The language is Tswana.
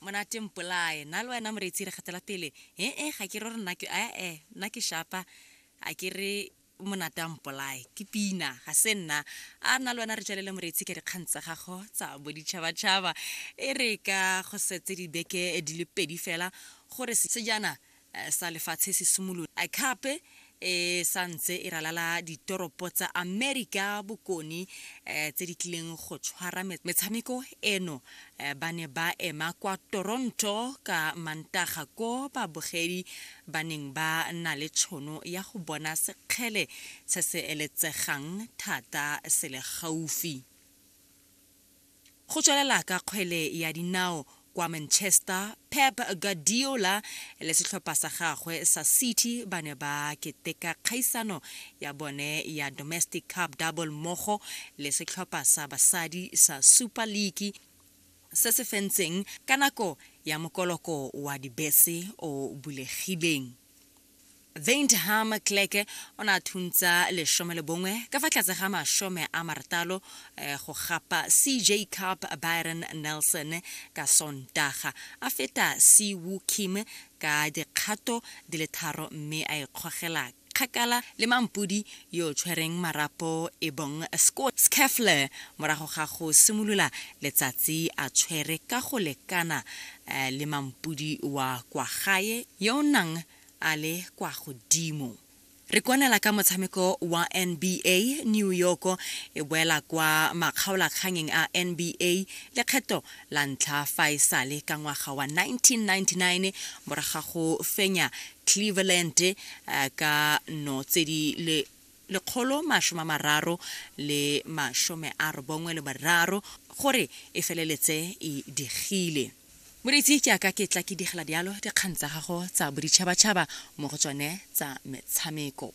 monate mpolae na le wena moreetsi re gatela pele ee ga ke re gore nna ke ee nna ke shapa a ke re monate a mpolae ke pina ga se nna a nna le wena re tswelele moreetsi ka dikgang tsa gago tsa boditšhabatšhaba e re ka go setse dibeke di le pedi fela gore sejana Eh, sa lefatshe se simolola a khape e sa ntse e ralala ditoropo tsa amerika bokone um tse di tlileng go tshwara metshameko eno eh, ba ne ba ema kwa toronto ka mantaga ko babogedi ba neng ba na le tšhono ya go bona sekgele se se eletsegang thata se le gaufi Go tswelela ka kgwele ya dinao kwa Manchester, Pep Guardiola le setlhopha sa gagwe sa City ba ne ba keteka kgaisano ya bone ya Domestic Cup Double mmogo le setlhopha sa basadi sa Super League se se fentseng ka nako ya mokoloko wa dibese o bulegileng. Wyntham Clerke o ne a thuntsa lesome le bongwe ka fa tlase ga masome a maratalo eh, go gapa CJ Cup Byron Nelson ka Sontaga, a feta Si Woo Kim ka dikgato di le tharo mme a ikgogela kgakala le mampodi yo o tshwereng marapo e bong Scott Scheffler morago ga go simolola letsatsi a tshwere ka go lekana eh, le mampudi wa kwa gae yo o nang a le kwa godimo. Re kwanela ka motshameko wa NBA, New York e boela kwa makgaolakganyeng a NBA lekgetho la ntlha fa e sale ka ngwaga wa 1999 morago ga go fenya Cleveland eh, ka no tse di le lekgolo masome a mararo le masome a robongwe le bararo gore e feleletse e digile moreetsi jaaka ke tla ke digela dialo dikgang tsa gago tsa boditšhabatšhaba mo go tsone tsa metshameko